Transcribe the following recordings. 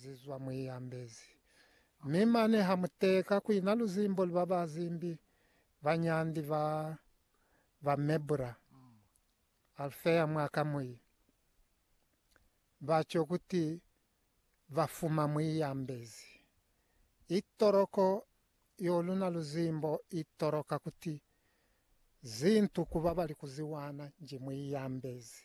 ze zwa mwi yambezi. Mi mane ha mu teka ku ina luzimbo lu ba ba zimbi banyandi ba ba Mebula, Alfea mwa ka mwi ba co kuti ba fuma mwi yambezi. I toloko yo luna luzimbo i toloka kuti zintu ku ba ba li ku ziwana nji mwi yambezi.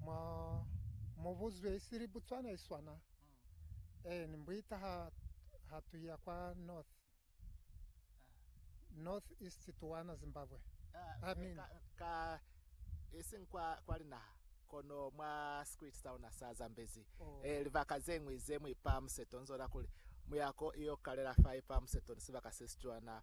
Mwa mubuzwi isili Botswana iswana. Eeni, mbuita ha ha tuya kwa north north east tuwana Zimbabwe. Amen. Ka, ka ising kwa kwa linaha kono mwa script sauna sa Zambezi. Oh. Eh, libaka zeñwi ze muipa museto nzola kuli muyako iyo kalela fa ipa museto ni sibaka sesicwana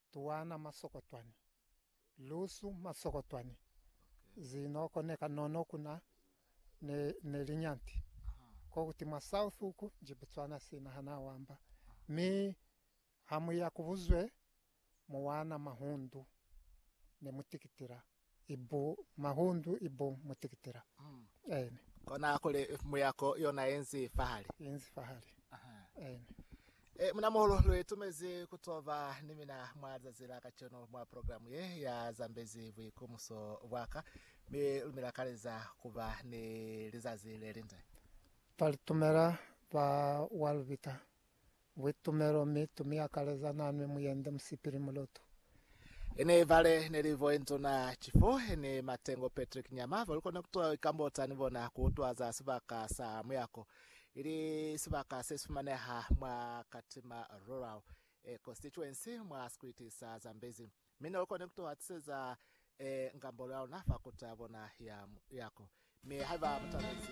Tuwana masokotwani, lusu masokotwani, zinoko ne kanono kuna ne, ne linyanti ko kuti mwa south uku nji Botswana sina ha na wamba. Mi ha mu ya ku buzwe mu wana mahundu ne mu tikitila. i bu mahundu i bu mutikitila. Aine. Kona kuli mu yako yona yenzi fahali. Yenzi fahali. Aine. E, munamuhulu lu itumezi kutoba ni mina mwa zazi la kacenu mwa programu ye ya Zambezi Buikumuso Bwaka, mi lumi la kaleza kuba ni lizazi lelinde. Twalitumela ba wa lubita Buitumelo, mi tu mi akaleza nanwi muyende musipili mulutu. Ene ibale neli vo enzo na chifo ene matengo Patrick nyama vo likona kutuwa ikambo tsani bona kuutwa za sibaka sa muyako ili sibaka se sifumaneha mwa Katima Rural e Constituency mwa sikwiti sa Zambezi mi no likone kutuwa tiseza e ngambolo ya luna fa kuta bona ya muyako mi haiba mutabezi